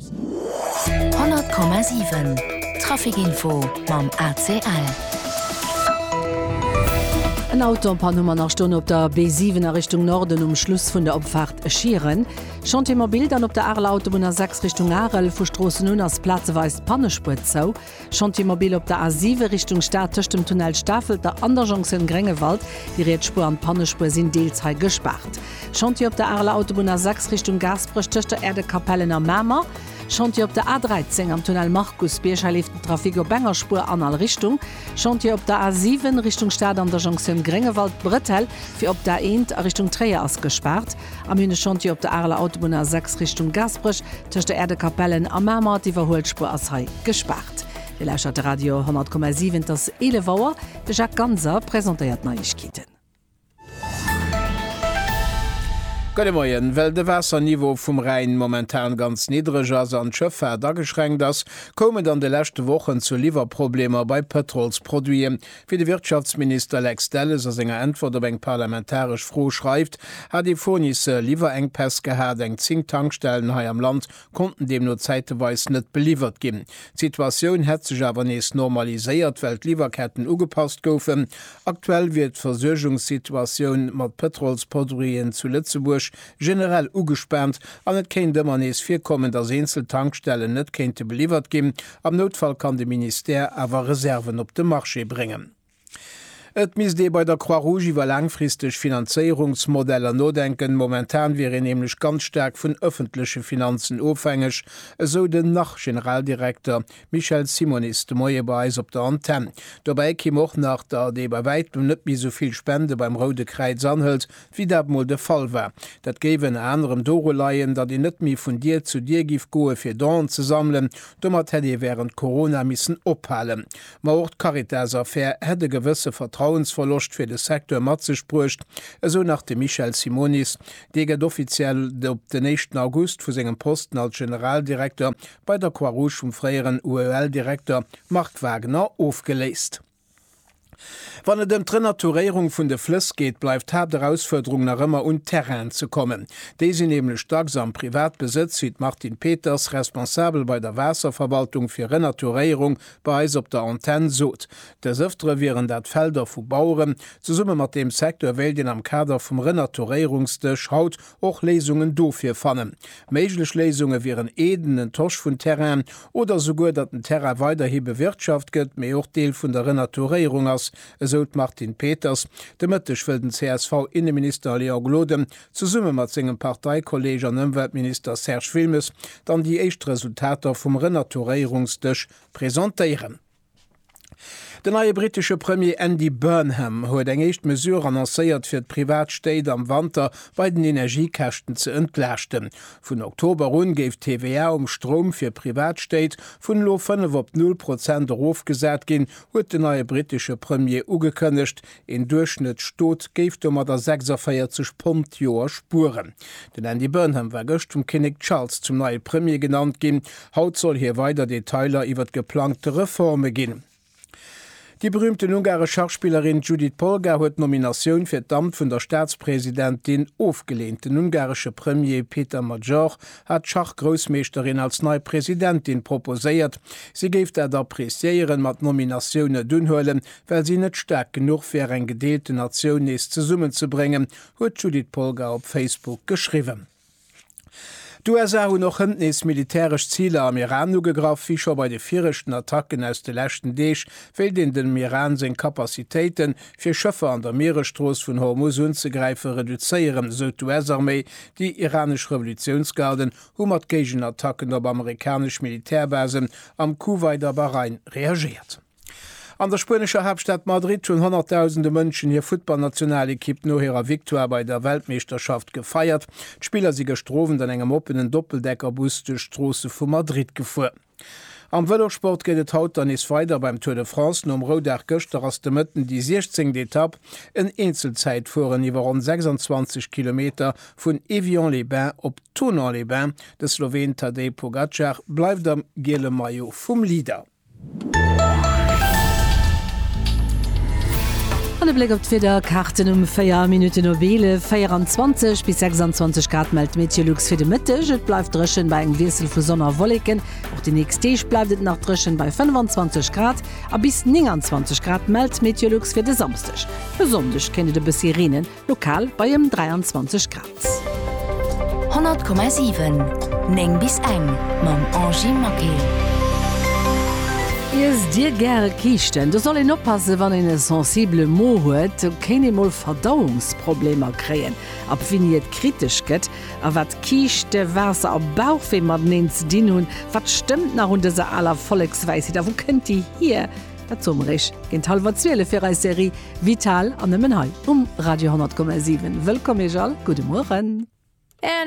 100,7 Trafic Info mam ACL. En Auto am Pann hu mer nach stoen op der B7 a Richtung Norden um Schluss vun der Opfaart Schieren. Chantier mobil dann op der Areler Autobunn A6 Richtung Arel, vu Stroossen un ass plazeweis d'Pannespuer zou. Chantier mobil op der A7 Richtung Stad tëscht dem Tunnel Stafelter an der Jonction Gréngewald. Déi riets Spuer an d'Pannespuer sinn deels hei gespaart. Chantier op der Areler Autobunn A6 Richtung Gaasperech tëscht der Erdekapellen a Mamer. Chantier op der A13 am Tunnel Markusbierg, hei leeft den Trafic op enger Spuer an all Richtung. Chantier op der A7 Richtung Stad an der Jonction Gréngewald, D'Bretelle fir op d'A1 a Richtung Tréier ass gespaart. Am Hühne-Chantier op der Areler Autobunn A6 Richtung Gaasperech, tëscht der Äerdekapellen a Mamer, d'Iwwerhuelspuer ass hei gespaart. Dir lauschtert de Radio 100,7, et ass 11 Auer. De Jacques Ganser presentéiert d'Neiegkeeten. Gudde Moien. Well de Waasserniveau vum Rhäin momentan ganz niddreg ass an d'Schëffaart ageschränkt ass, koum et an de leschte Wochen zu Liwwerproblemer bei Pëtrolsproduiten. Wéi de Wirtschaftsminister Lex Delles a senger Äntwert op eng parlamentaresch Fro schreift, hat ee Fournisseur liwwer Enkpäss gehat, eng zéng Tankstellen hei am Land konnten deemno zäiteweis net beliwwert ginn. D'Situatioun hätt sech awer nees normaliséiert, well d'Liwwerketten ugepasst goufen. Aktuell wier d'Versuergungssituatioun mat Pëtrolsproduiten zu Lëtzebuerg generell ugespaant an et kéint ëmmer nees virkommen, datt eenzel Tankstellen net kéinte beliwwert ginn, Am Noutfall kann de Ministère awer Reserven op de Marché bréngen. Et misst ee bei der Croix-Rouge iwwer laangfristeg Finanzéierungsmodeller nodenken. Momentan wier een nämlech ganz staark vun ëffentleche Finanzen ofhängeg, esou den Nach-Generaldirekter Michel Simonis de Moie bei eis op der Antenn. Dobäi kimm och nach, datt ee bei wäitem net méi esou vill Spende beim Roude Kräiz anhëlt, wéi dat mol de Fall war. Dat géif ënner anerem doru leien, datt een net méi vun Dier zu Dier géif goe fir Donen ze sammelen. Domat hätt ee wärend Corona missen ophalen. Ma och d'Caritas-Affär hätt e gewësse Vertrauensverloscht fir de Secteur mat sech bruecht, esou nach de Michel Simonis. Dee gëtt offiziell op den éischten August vu sengem Posten als Generaldirekter bei der Croix-Rouge vum fréieren UEL-Direkter Marc Wagner ofgeléist. Wann et ëm d'Renaturéierung vun de Flëss geet, bleift d'Haapterausfuerderung nach ëmmer un Terrainen ze kommen. Déi sinn nämlech dacks am Privatbesëtz, wéi d'Martine Peters, Responsabel bei der Waasserverwaltung fir Renaturéierung, bei eis op der Antenn sot. Des Ëftere wieren dat Felder vu Baueren. Zesumme mat deem Secteur wéilt een am Kader vum Renaturéierungsdësch haut och Léisungen dofir fannen. Méiglech Léisunge wieren eeden Entosch vun Terrainen oder esouguer, datt den Terrain weiderhi bewirtschaft gëtt, mee och Deel vun der Renaturéierung ass, esou d'Martine Peters. De Mëtteg wëll den CSV-Inneminister Léon Gloden zesumme mat sengem Parteikolleeg an Ëmweltminister Serge Wilmes dann déi éischt Resultater vum Renaturéierungsdësch presentéieren. Den neie brittesche Premier Andy Burnham huet eng éischt Mesure annoncéiert, fir d'privat Stéit am Wanter bei den Energiekäschten ze entlaaschten. Vun Oktober un géif d'TVA um Stroum fir privat Stéit vun elo 5 op null Prozent erofgesat ginn, huet den neie brittesche Premier ugekënnegt, Een Duerchschnëttstot géif domadder 46 Pond d'Joer spueren. Den Andy Burnham war gëscht vum Kinnek Charles zum neie Premier genannt ginn. Haut soll hie weider Detailer iwwert geplangte Reforme ginn. Déi berüümten ungaresch Schachspillerin Judit Polgar huet d'Nominatioun fir d'Amt vun der Staatspresidentin ofgeleent. Den ungaresche Premier Péter Magyar hat d'Schachgroussmeeschterin als nei Presidentin proposéiert. Si géif dat appreciéieren, ma d'Nominatioun net unhuelen, Well si net staark genuch wär, eng gedeelte Natioun nees zesummenzebréngen, huet d'Judith Polgar op Facebook geschriwwen. D'USA hunn och hënt nees militäresch Ziler am Iran ugegraff. Wéi scho bei de viregten Attacken aus de leschten Deeg, wéilt een dem Iran seng Capacitéiten, fir Schëffer an der Mieresstrooss vun Hormuz unzegräifen, reduzéieren, esou d'US-Arméi. Déi iranesch Revolutiounsgarden hu mat Géigenattacken op amerikanesch Militärbasen am Kuwait a Bahrain reagéiert. An der spuenescher Haaptstad Madrid hunn honnertdausende Mënschen hir Futtballnationalekipp no hirer Victoire bei der Weltmeeschterschaft gefeiert. D'Spiller si gëschter Owend an engem oppenen Doppeldeckerbus duerch d'Stroosse vu Madrid gefuer. Am Vëlosport geet et haut dann nees weider beim Tour de France. Nom Roudag gëschter ass de Mëtten déi 16. Etapp, en Eenzelzäitfueren iwwer ronn 26 Kilometer, vun Évian-les-Bains op Thonon-les-Bains. De Sloween Tadej Pogacar bleift am giele Maillot vum Leader. An e Bléck op d'Wiederkaarten um 4 Minutten op 11, 24 bis 26 Grad mellt d'Meteolux fir de Mëtteg. Et bleift dréchen bei engem Wiessel vu Sonn a Wolleken. Och déi nächst Deeg bleift et nach dréchen bei 25 Grad a bis 29 Grad mellt d'Meteolux fir de Samsdeg. E Sonndeg kéint et e bëssi reenen. Lokal bei ëm 23 Grad. 100,7 9 bis eng mam Angie Maquet. Iess dir gäre Kiischten? Do soll een oppassen, wann een e sensibele Mo huet, do kéint ee mol Verdauungsproblemer kréien. Ab wéini et kritesch gëtt a wat Kiischte, Waasser a Bauchwee mateneen ze dinn hunn, wat stëmmt nach un dëser aler Vollekswäisheet a wou kënnt déi hier? Dat Summereg géint hallwer 12 fir eis Serie Vital an nëmmen hei um Radio 10,7. Wëllkomm Iech all, gudde Mueren.